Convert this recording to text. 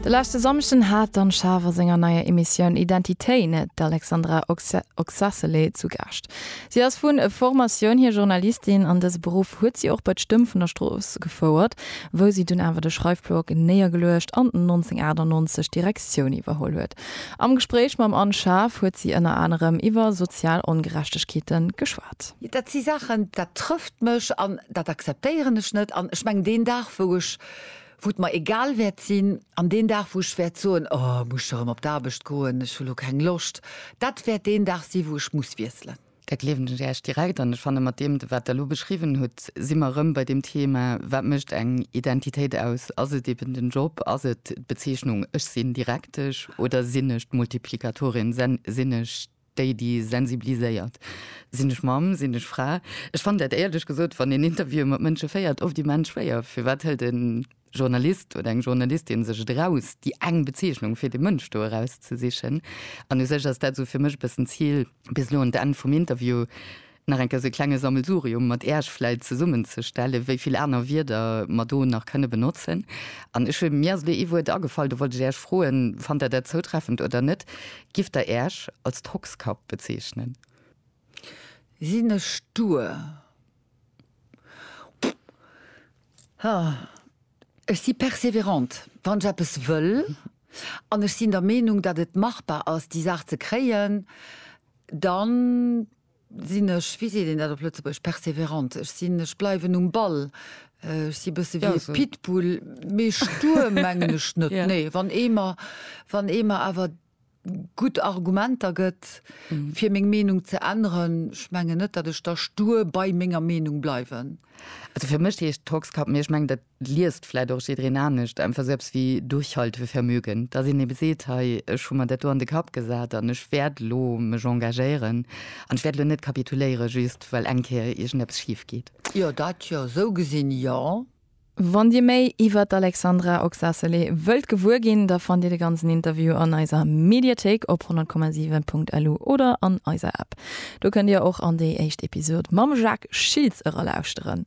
De leschte Samschden hat d'Anne Schaaf a senger neier Emissioun Identitéin d'Alexandra Oxacelé zu Gaascht. Si ass vu Formatioun hier Journalistin an dëse Beruff huet si och bei d'Stëmm vun der Strooss gefouert, wou si dunn awer de Schreifblock néiergeluecht an 1998 d'Direktioun iwwerholl huet. Am Gespréich mam Anne Schaaf huet si ënner anerem iwwer sozial Ongerechtegkeete geschwat. geklappt. Dat si Saachen, dat trëfft mech an dat akzeptéieren ech net. An ech mengen, deen Dag, wou ech, wou et mer egal wäert sinn, an deen Dag, wou ech wäert soen, Oh, muss ech erëm op d'Aarbecht goen, ech hu lo keng Loscht, dat wäert deen Dag si wou ech muss wiesselen. Dat gleewen ech Iech direkt. An ech fanne mat deem, wat Der elo beschriwwen hutt, si mer erëm bei deem Thema, Wat mécht eng Identitéit aus? Ass et eben den Job? Ass et d'Bezeechnung, Ech sinn Direktesch oder sinn ech d'Multiplikatorin, sinn ech Déi déi sensibiliséiert. Sinn ech Mamm? Sinn ech Fra? Ech fannen dat éierlech gesot, wann een Interviewen mat Mënsche féiert, oft immens schwéier. Firwat hëlt e Journalist oder eng Journalistin sech et eraus, déi eng Bezeechnung fir dee Mënsch do erauszesichen? An u sech ass dat esou fir mech e bëssen d'Zil bis elo un d'Enn vum Interview Nach eng Kéier esou e klenge Sammelsurium mat Äerch vläit zesummenzestellen, wéi vill aner Wierder mer do nach kënne benotzen. An ech hunn, mir ass elo ee Wuert agefall, do wollt ech Äerch froen, fannt Der dat zoutreffend oder net? Gifft Der Äerch als Tockskapp bezeechnen? Sinn ech stur? Ha, ech si persévérant, wann ech eppes wëll an ech sinn der Meenung, datt et machbar ass, déi Saach ze kréien, dann sinn ech, wéi seet een dat op Lëtzebuerg, persévérante, ech sinn, ech bleiwen um Ball, ech si bësse wéi e Pitbull, mee stur mengen ech net, nee, wann ee mer, wann ee mer awer gutt Argumenter gëtt fir meng Meenung ze änneren, ech mengen net, datt ech da stur bei menger Meenung bleiwen. Also fir mech heescht Toxcap, mee ech mengen dat liest vläit och jiddreen anescht, einfach sou eppes wéi Durchhaltevermögen, dass een ebe seet, hei, ech hu mer dat do an de Kapp gesat an ech wäert elo mech engagéieren an ech wäert elo net kapituléiere just well eng Kéier iergendeppes schif geet. Jo, dat jo, sou gesinn jo. Wann Dir méi iwwert d'Alexandra Oxacelé wëllt gewuer ginn, da fannt Dir de ganzen Interview an eiser Mediathéik op 100,7.lu oder an eiser App. Do kënnt Dir och an déi éischt Episod mam Jacques Schiltz eralauschteren.